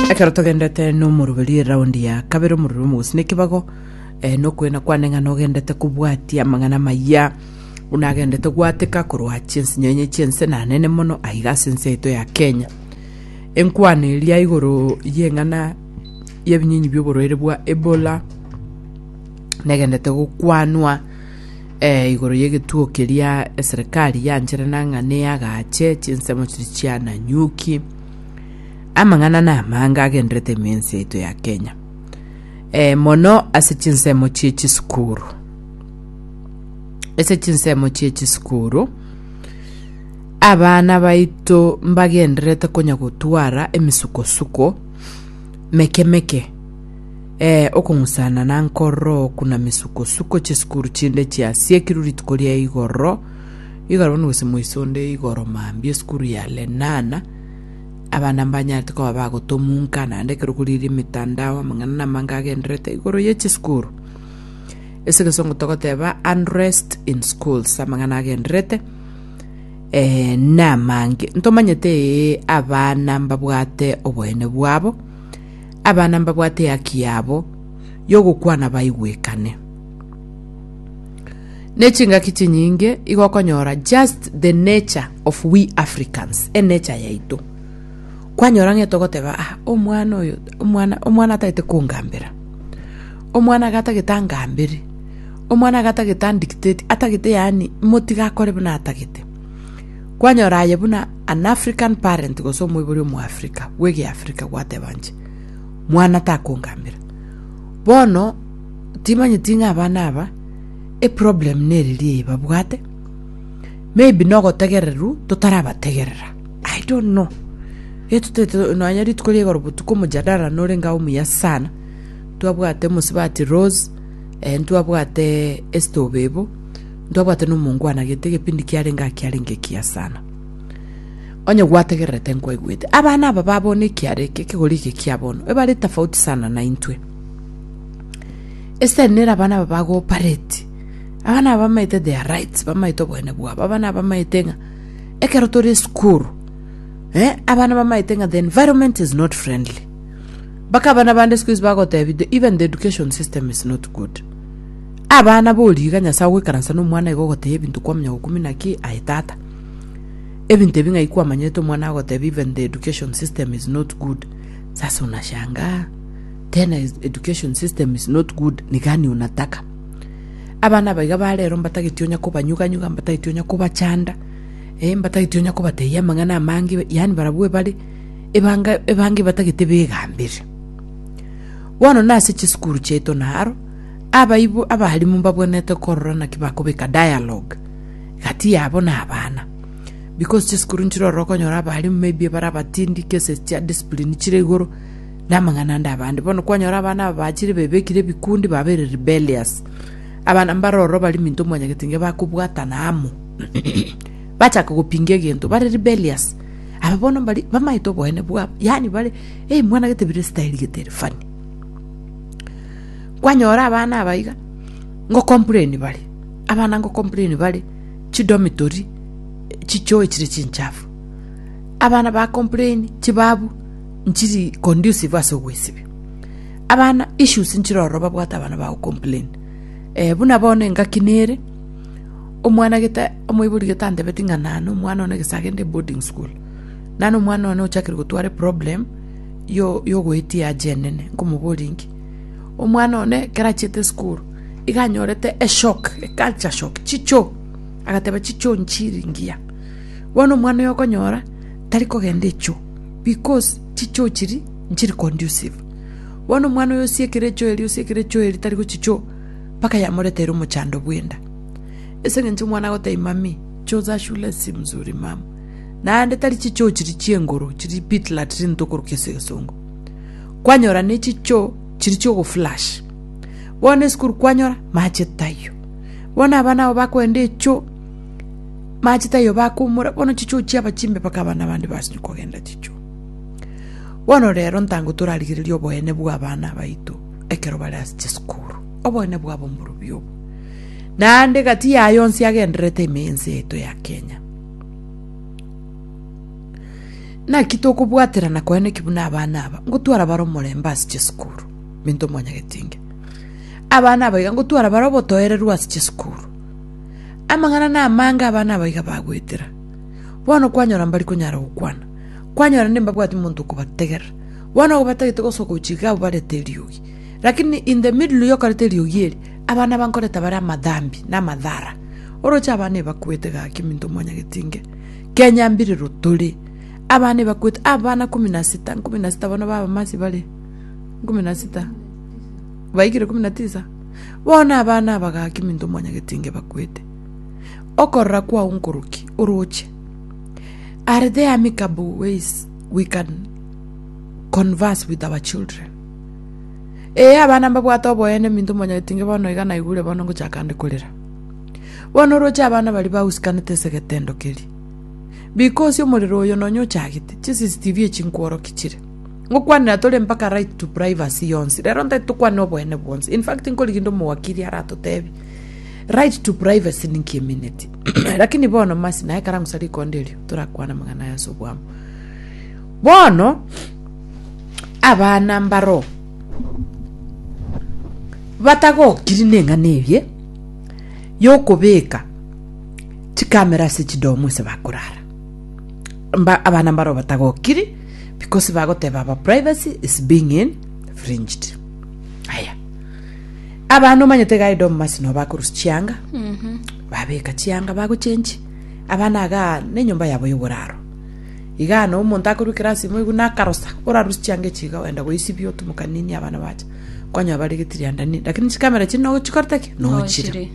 ekero togendete nomoroberi eraundi ya kabere omoroberi omogosi na ekebago eh, nokwena kwane ng'a nogendete kobwatia amang'ana amaya buna agendete gwateka korwa chiense nyenye chiense nanene mono aiga ase ense yaito ya kenya enkwana eria igoro y'eng'ana y'ebinyinyi bi'oborwaire bwa ebola negendete gokwanwa eh, igoro y'egetuo keria eserekari yanchere nang'a neyagache chinsemo chiri chiananyuki amang'ana na amanga agenderete emensi yaito ya kenya eh, mono ase chinsemo chie chisukuru ase chinsemo chie chisukuru abana baito mbagenderete konya gotwara emisukosuko meke meke Ee, okong'usana na nkororo oku na misuko-suko chisukuru chinde chiasiekirwe rituko ria igoro, igo arabwo nigose moise onde igoro mambia esukuru ya Lenana, abana mbanyarete koba bagotomunka, naende ekero koriire emetandao, amang'ana namange agendererete igoro ye chisukuru. Ase egesongo togoteba unrest in schools, amang'ana agendererete, eh, namange. Ntomanyete ee, abana mbabwate oboene bwabo, abana mbabwate ehaki yabo y'ogokwana baigwekane. Ne chingaki chinyinge igo okonyora just the nature of we Africans, enature yaito. Kwanyora ng'ete ogoteba ah, omwana oyo, omwana, omwana atagete kongambera. Omwana iga atagete angambere. Omwana iga atagete andictate, atagete yaani motiga akore buna atagete. Kwanyora aye buna an African parent gose omoibori omoafrika bw'egeafrika gwateba inche, Mwana takongambera. Bono timanyeti ng'a abana aba eproblem neriria eye babwate, maybe nogotegereru totarabategerera. I don't know. Getotete nonya rituko ria igoro botuko omojadara norenge ao omuya sana. Twabwate omosibati Rose, eh, ntwabwate Esther Obebo, Ntobwate nomonko anagete egepindi kiarenge aa kiarenge ekiya sana. Onye gwategererete nkwaigwete. Abana aba ba bono ekiara eke ekegori eke kia bono ebare tofauti sana na intwe. Esitari nere abana aba ba cooperate. Abana aba bamaete their rights, bamaete oboene bwabo. Abana aba bamaete ng'a ekero tore esukuru, eh, abana bamaete ng'a the environment is not friendly. Mpaka abana bande siku hizi bagotebia even the education system is not good. Abana boriga Nyasae ogoikaransa nomwana igo ogotebia ebinto kwamanya gokumina ki aye tata. Ebinto ebi ng'ai kwamanyete omwana agotebia even the education system is not good. Sasa unashangaa tena education system is not good ni gani unataka. Abana aba iga barero mbatageti onya kobanyuganyuga mbatageti onya kobachanda eh mbatageti onya kobatebia amang'ana amange yaani barabwo ebare ebanga ebange batagete begambere. Bono nase chisukuru chiaito naro. Abaibu abalimu mbabwenerete korora naki bakobeka dialogue gati yabo na abana because chisukuru nchire ororo okonyora abalimu maybe bare abatindi cases chia discipline chire igoro na amang'ana ande abande bono kwanyora abana aba bachire bebekire ebikundi babere rebellious abana mbare ororo bari minto mwanyagete nge bakobwatana amo bachaka gopinga egento bare rebellious aba bono mbari bamaete oboene bwabo yaani bare hey mwanagete bire style gete ere funny kwanyora abana aba iga ngocomplain bare abana ngocomplain bare chidomitori chichoe chire chinchafu abana bacomplain chibabu nchiri conducive ase ogwesibia abana issues nchire ororo babwate abana bagocomplain eh, buna bono engaki nere omwana gete omoibori gete antebeti ng'a nano omwana one gese agende boarding school nano omwana one ochakire gotware problem yo yogoetia aje enene nkomoboria inki Omwana one ekero achiete esukuru, iga anyorete eshock, eculture shock, chichoo, agateba chichoo nchiri ngiya. Bono omwana oyo okonyora tari kogenda echoo because chichoo chiria nchiri condusive. Bono omwana oyo osiekire echoo eria, osiekire echoo eria tari gochia choo, mpaka yamoretere omochando bw'enda. Ase eng'encho omwana agoteba mami, choo za shule si mzuri mama. Naende tari chichoo chiria chi'enguru, chiria pit latrine tokorokia ase egesongo. kwanyora ne chicho chiri chi'ogoflash. Bono esukuru kwanyora, mache taiyo. Bono abana abo bakoenda echo, mache taiyo bakoumora, bono chicho chiaba chimbe mpaka abana bande basinywe kogenda chicho. Bono rero ntango torarigereria oboene bw'abana baito ekero bare ase chisukuru, oboene bwabo mborobio obo. Naende gati yaye onsi agendererete ime y'ense yaito ya Kenya. Naki tokobwaterana koyana ki buna abana aba, ngotwara bare omorembe ase chisukuru? Minto omwanyageti inge. Abana abaiga ngotwara bare obotoereru ase chisukuru. Amang'ana namange abana abaiga bagwetera. Bono kwanyora mbari konyara gokwana. Kwanyora nde mbabwati monto okobategerera. Bono agwo batagete gosoka gochia iga abwo barete eriogi. Lakini in the middle yokoreta eriogi eri, abana aba nkoreta bare amadhambi na amadhara. Oroche abana ebakwete gaki minto omwanyageti inge. Kenya mbirero tore. Abana ebakwete, abana kumi na sita, nkumi na sita bono b'abamasi bare, nkumi na sita, baikire kumi na tisa. Bono abana aba gaki minto omwanyageti inga ebakwete. Okorora kwao nkoroki, oroche. Are there amicable ways we can converse with our children? Ee, abana mbabwate oboene minto omwanyageti inga bono iga naigure bono ngochaka ande korera. Bono oroche abana baria bagusikanete esegetendo keria. Bika ose omorero oyo nonya ochagete, chiCCTV echi nkworoki chire. Ngokwanera tore mpaka right to privacy yonsi. Rero ntagete tokwane oboene bwonsi. In fact nkorigia rinde omowakiri aratotebi, right to privacy ninki emineti. Lakini bono mercy naye ekero angosa rikonda erio, torakwane amang'ana aya ase oboamo. Bono, abana mbaro. Batagokiri neng'ana eye yokobeka chikamera ase chidomo ase bakorara. Mba abana mbaroo batagokiri because bagoteba our privacy is being infringed. Aya. Abana omanyete iga edomu masi no bakorusia chianga. Babeka chianga bagochenchi. Abana iga nenyomba yabo yoboraro. Igana, omonto akoruekera ase imo iguna akarosa, orarusie chianga echi iga, ogenda goisibia otumoka nini abana bacha, kwanyora bare getirianda nini, lakini chikamera echi no chikorete ki? No chire. Nochire.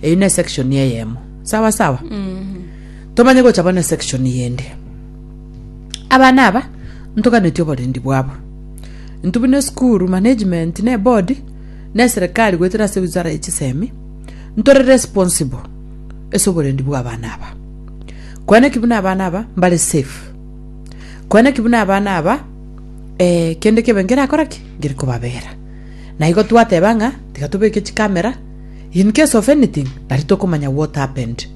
Eyio ne section eyemo. Sawa sawa. Tomanye gocha bono section yende. Abana aba ntoganeti oborendi bwabo. Intu buna school management ne board ne serikali goetera ase wizara ye chisemi ntore responsible ase oborendi bwa abana aba. Koene ki buna abana aba mbare safe. Koene ki buna abana aba eh, kende kebe ngerakora ki? Ngere kobabera. Na igo twateba ng'a tiga tobeke chikamera, in case of anything, nari tokomanya what happened.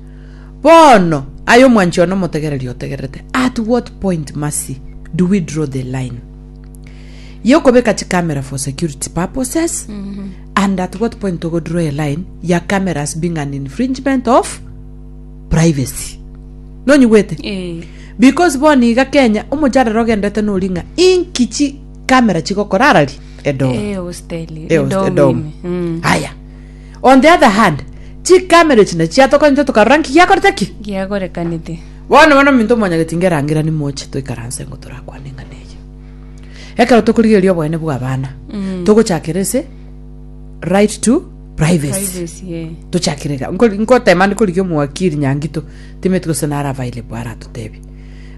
Bono, aye omwanchi one omotegereri otegererete, at what point, Mercy, do we draw the line? Ye okobeka chikamera for security purposes, and at what point togo draw a line ya cameras being an infringement of privacy nonyigwete Eh. because bono iga kenya omocharere ogendete nori ng'a inki chi camera chigokora arari edomo Eh, hosteli. Eh, Edomu edomu. ime. Mm. haya on the other hand chikamera echi nachiatokonyete tokarora nki giakorete ki Giagorekanete. bono bono minto omonyageti ngerangerani moche toikaranse ngo torakwane eng'ana eye ekero tokorigereria obonene bwa abana Mm. togochakera ase right to Privacy. Privacy, eh. tochakire ga Nko- nkotema ndi korigia omwakiri nyangito timeti gose nara available aratotebie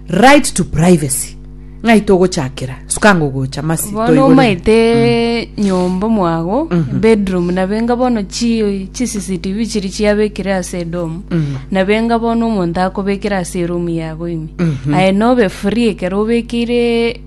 right to privacy ng'ai togochakera sukanga ogocha masi bono toigorere. omaete nyomba mwago bedroom nabenga bono chi chi cctv chiri chiabekire ase edomu Mhm. nabenga bono omonto akobekera ase eromu yago ime aye nobe free ekero obekeire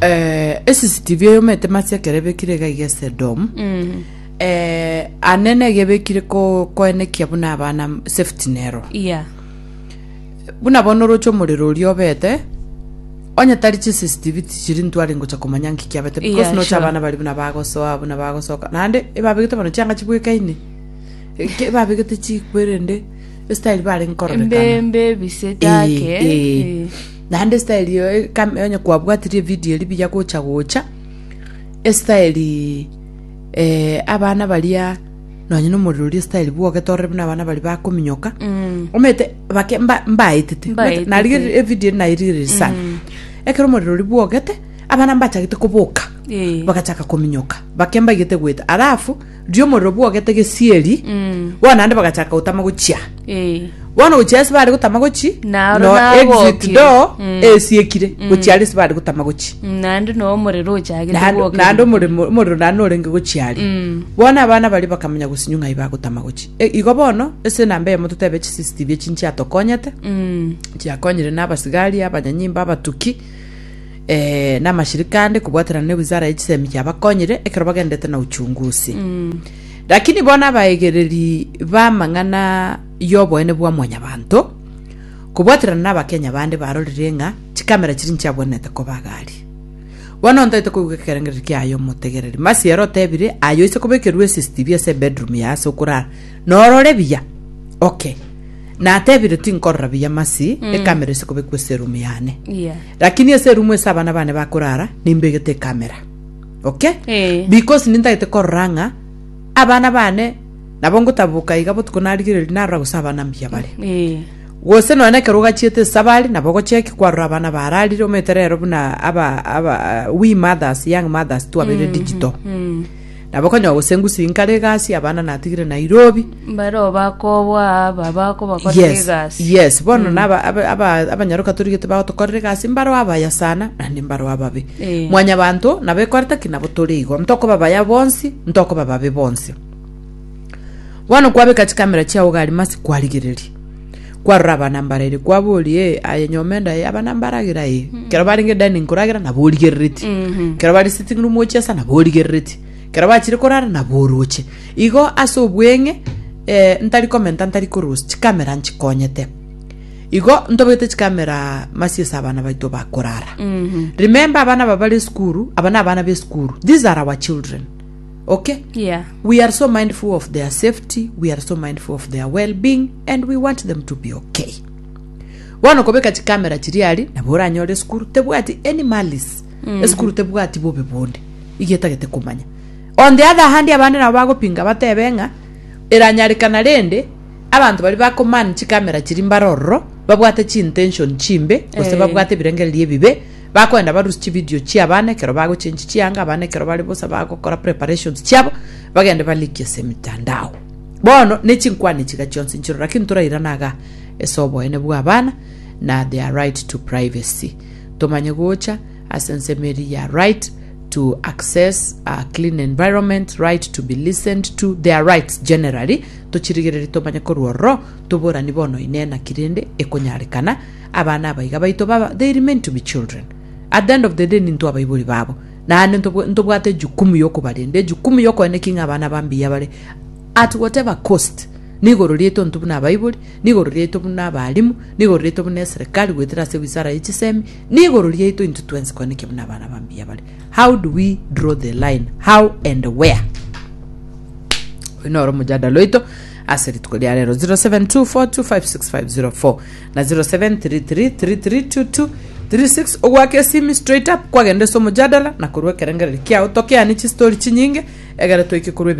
eh, esisitivi eyomete masi ekerebekire iga iga esedomu Mm. eh, anene egebekire ko- koenekia buna abana safety nero Yeah. buna bono oroche omorero oria obete onye tari chisisitivi tichiri ntwari ngocha komanya nki kiabete because Yeah, nocha sure. abana bari buna bagosoa buna bagosoka naende ebabegete bono chianga chibwekaine Eke- ebabegete chikwerende esitayiri bare nkororeka Embe embe bisitake. Eh, eh. Naende style eye kame onye kwabwatirie evidio eria buya gocha gocha, estyle abana baria nonye na omorero oria estyle bwogete orore buna abana baria bakominyoka, omanyete bake mba- mbaetete. Omanyete naria Mbaetete. evidio eria nairigereiri sana. Ekero omorero oria bwogete, abana mbachagete koboka, Ee. bagachaka kominyoka, bake mbaigete goeta. Alafu. ri'omorero bwogete gesieri bono naende bagachaka gotama gochia Eh. bono gochia ase bare gotama gochi Naro no exit nagokire. door Mm. esiekire gochia are ase bare gotama gochi Naende no omorero ochagete Naende- gwoka. naende omoremo- omorero naende norenge gochia are Mm. bono abana baria bakamanya gosinywa ng'ai bagotama gochi E, igo bono ase enamba eyemo totebe chi CCTV echi nchiatokonyete Mm. chiakonyire na abasigari abanyanyimba abatuki eh, namashirika ande kobwaterana ne wizara ya chisemi kiabakonyire ekero bagendete na uchungusi lakini bono abaegereri b'amang'ana y'oboene bwa mwanyabanto kobwaterana na abakenya bande barorire ng'a chikamera chiri nchiabwenerete koba agari bono ntaete koigwa ekerengereri kiaye omotegereri masiero otebire aye oise kobekerwa cctv ase ebedroom ya ase okorara Norore buya, okay. Natebire tinkorora buya masi, ekamera ise kobekwa ase erumu yane. Yeah. Lakini ase erumu ase abana bane bakorara, nimbegete ekamera. Okay? Eh. Because nintagete korora ng'a abana bane nabo ngotaboka iga botuko narigereria narora gose abana mbuya bare. Eh. gose nonya na ekero ogachiete esabari nabo ogocheki kwarora abana bararire omanyete rero buna aba aba we mothers young mothers twabere digital Nabo konya ogosengusia inkare egasi abana natigire Nairobi. Bareo bakoboa aba bakobakorera Yes, egasi. yes. Bono naba aba- aba- abanyaroka torigete bagotokorera egasi mbareo abaya sana naende mbareo ababe. Eh. Mwanyabanto nabo ekorete ki nabo tore igo. Ntokoba baya bonsi, ntokoba babe bonsi. Bono kwabeka chikamera chiao gari masi kwarigereria. kwarora abanambara ere kwaboria ee aye nyoma enda ee abanambara agere aye kero barenge dining koragera nabo origerereti kero bari sitting room gochiesa nabo origerereti kero bachire korara nabo oroche igo ase obweng'e eh, ntari komenta ntari korusia chikamera nchikonyete igo ntobegete chikamera masi ase abana baito bakorara remember abana aba bare esukuru aba na abana b'esukuru these are our children Okay? Yeah. We are so mindful of their safety, we are so mindful of their well-being, and we want them to be okay. Bono kobeka chikamera chiri ari nabo oranyore esukuru tebwati any malice esukuru tebwati bobe bonde igo etagete komanya on the other hand abande nabo bagopinga batebe ng'a eranyarekana rende abanto bari bakomani chikamera chiri mbare ororo babwate chintention chimbe gose Eh. babwate ebirengererio ebibe Bakoenda barusie chividio chi'abana ekero bagochenchi chianga, abana ekero bare bosa bagokora preparations chiabo, bagende balikie ase emitandao. Bono ne chinkwane chiga chionsi nchiroro, lakini torairana iga ase oboene bw'abana na their right to privacy. Tomanye gocha ase ensemo eria ya right to access a clean environment, right to be listened to, their rights generally, tochirigererie tomanye korwa ororo toborani bono inee naki rende ekonyarekana, Abana abaiga baito baba, they remain to be children. At the end of the day nintwe abaibori babo. Naende ntobw- ntobwate ejukumu yokobarenda, ejukumu yokoenda ki ng'a abana ba mbuya bare at whatever cost. Nigoro riaito intwe buna abaibori, nigoro riaito buna abalimu, nigoro riaito buna eserekari goetera ase wisara ye chisemi, nigoro riaito intwe twensi koenda ki buna abana ba mbuya bare. How do we draw the line? How and where? Oyo noro omojadala oito. Ase rituko ria rero 0724256504 na 0733332236 ogwake esimi straight up kwagenda ase omojadala na korwa ekerengereri kiao tokeani chistori chinyinge egere toike korwa ebire